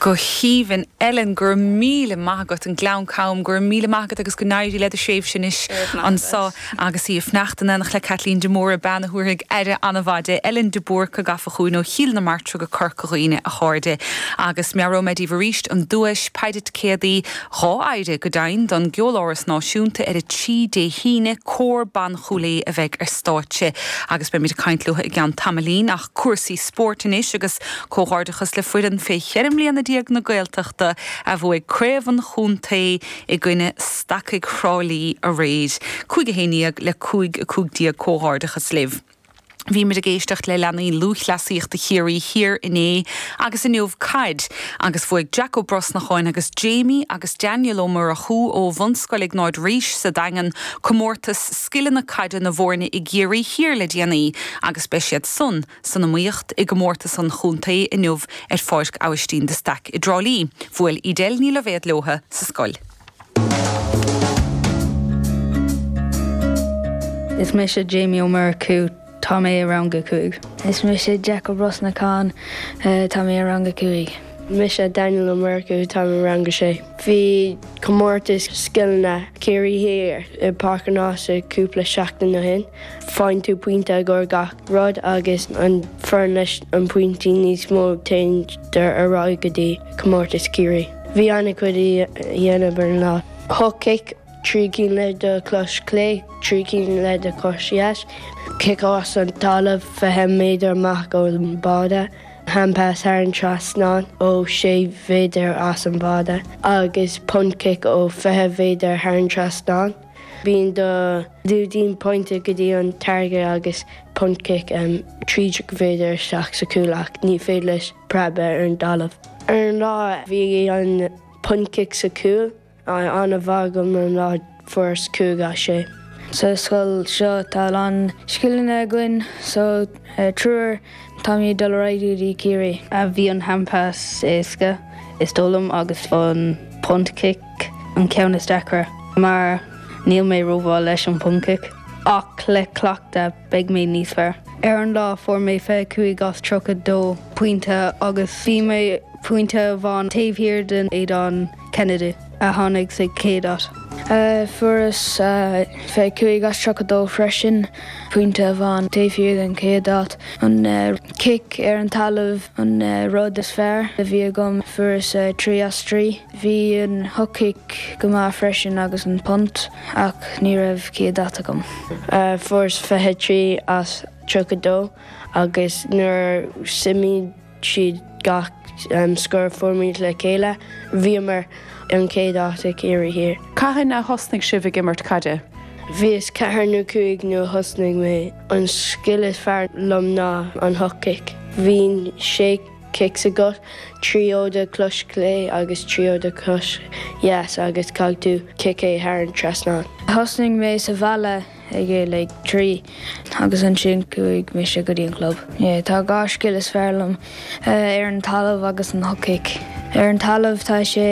go haoibhinn. Ellen, go raibh míle maith agat. Ón nGleann Cam, go raibh míle maith agat agus go n-éirí led thréimhse anois anso. Agus í ag fanacht in éineacht le Caitlín de Mórdha, bean a thabharfaidh aire an-mhaith di. Ellen de Búrca gafa chugainn ó Chill na Martra go Corca Dhuibhne, a chairde. Agus meabhróidh mé daoibh arís an duais, péire ticéadaí, dhá phéire go deimhin, don gCeoláras Náisiúnta ar a trí Dé hAoine. Cór Ban Chúil Aodha a bheidh ar stáitse. Agus beimid ag caint leo i gceann tamaillín. Ach. Cúrsaí spóirt anois agus comhghairdeachas le foireann fé cheithre mbliana déag na Gaeltachta a bhuaigh craobh an chontae i gcoinne Stacaigh Thrá Lí aréir. Cúig a haon déag le cúig a cúig déag comhghairdeachas libh. Bhí muid ag éisteacht le leanaí lúthchleasaíochta Chiarraí Thiar inné agus inniu caid agus bhuaigh Jack Ó Brosnacháin agus Jamie agus Daniel Ó Murchú ó Bhunscoil Iognáid Rís sa Daingean comórtas scileanna caide na bhfóirne i gCiarraí Thiar le déanaí agus beidh siadsan san iomaíocht i gcomórtas an chontae inniu ar Pháirc Abhaistín de Staic i dTrá Lí. Bhuail Edel Ní Loibhéad leotha sa scoil. Is mise Jamie Ó Murchú. Tá mé i rang a cúig. Is mise Jack Ó Brosnacháin. Tá mé i rang a cúig. Mise Daniel Ó Murchú. Táim i rang a sé. Bhí comórtas scileanna Ciarraí Thiar i bPáirc an Ághasaigh cúpla seachtain ó shin. Faigheann tú pointe i gcóir gach rud agus an fhoireann leis an pointí níos mó téann siad ar aghaidh go dtí comórtas Ciarraí. Bhí ana chuid le déanamh ar an lá. Hook kick Trí cinn le do chos chlé, trí cinn le do chos dheis, cic as an dtalamh fiche méadar amach ón mbáide, handpas thar an trasnán ó sé mhéadar as an mbáide, agus punt-cic ó fiche mhéadar thar an trasnán. Bíonn do lúidín pointe go dtí an táirge agus punt-cic trí déag méadar isteach sa chúl ach ní féidir leis preab ar an dtalamh. Ar an lá bhí an punt-cic sa chúl. an-mhaith agam ar an lá fuaireas 5 as 6. Sa scoil seo tá a lán scileanna againn so triúr táimid ag dul ar aghaidh go dtí Ciarraí. A bhí an handpas éasca is dóigh liom agus an punt cic an ceann is deacra mar níl mé rómhaith leis an punt cic ach le cleachtadh. beidh mé níos fearr. Ar an lá fuair mé 25 as 32 pointe agus bhí mé pointe amháin taobh thiar de Aidan Kennedy a tháinig sa chéad áit. Fuaireas 25 as 32 freisin, pointe amháin taobh thiar den chéad áit. An cic ar an talamh an rud is fearr a bhí agam, fuaireas 3 as 3. Bhí an hook kick go maith freisin agus an punt. Ach ní raibh céad áit agam. Fuaireas 23 as 32 agus nuair shuimigh siad gach scor a fuairimid le chéile bhíomar an chéad áit ag Ciarraí Thiar. Cathain a thosnaigh sibh ag imirt caide? Bhíos ceathair nó cúig nuair a thosnaigh mé. An scil is fearr liom ná an hook kick. Bíonn sé cics agat, trí ó do chos chlé agus trí ó do chos dheas agus caithfidh tú ciceáil thar an trasnán. Thosnaigh mé sa bhaile ag a like ag trí agus ansin chuaigh mise go dtí an chlub. Yeah, tá dhá scil is fearr liom, ar an talamh agus an hook kick. Ar an talamh tá sé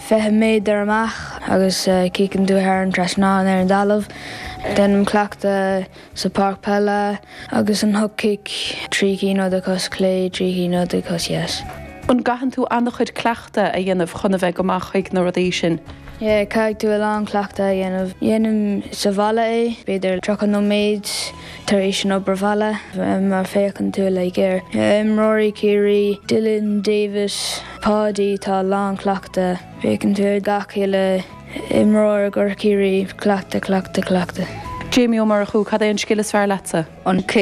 fiche méadar amach agus ciceann tú thar an trasnán ar an dtalamh. Déanaim cleachtadh. sa páirc peile agus an hook kick trí cinn ó do chos clé trí cinn ó do chos dheas. An gcaitheann tú an-chuid cleachtadh a dhéanamh chun a bheith go maith chuig na rudaí sin? Yeah, caithfidh tú a lán cleachtadh a dhéanamh. Déanaim sa bhaile é, b'fhéidir 30 nóiméad tar éis an obair bhaile. Mar féachann tú like ar imreoirí Chiarraí, Dylan, David, Paudie, tá a lán cleachtadh. Féachann tú ar gach uile. Imreoir i gcomhair Chiarraí, Cleachtadh, cleachtadh, cleachtadh. Jamie Ó Murchú, Cad é an scil is fearr leatsa? An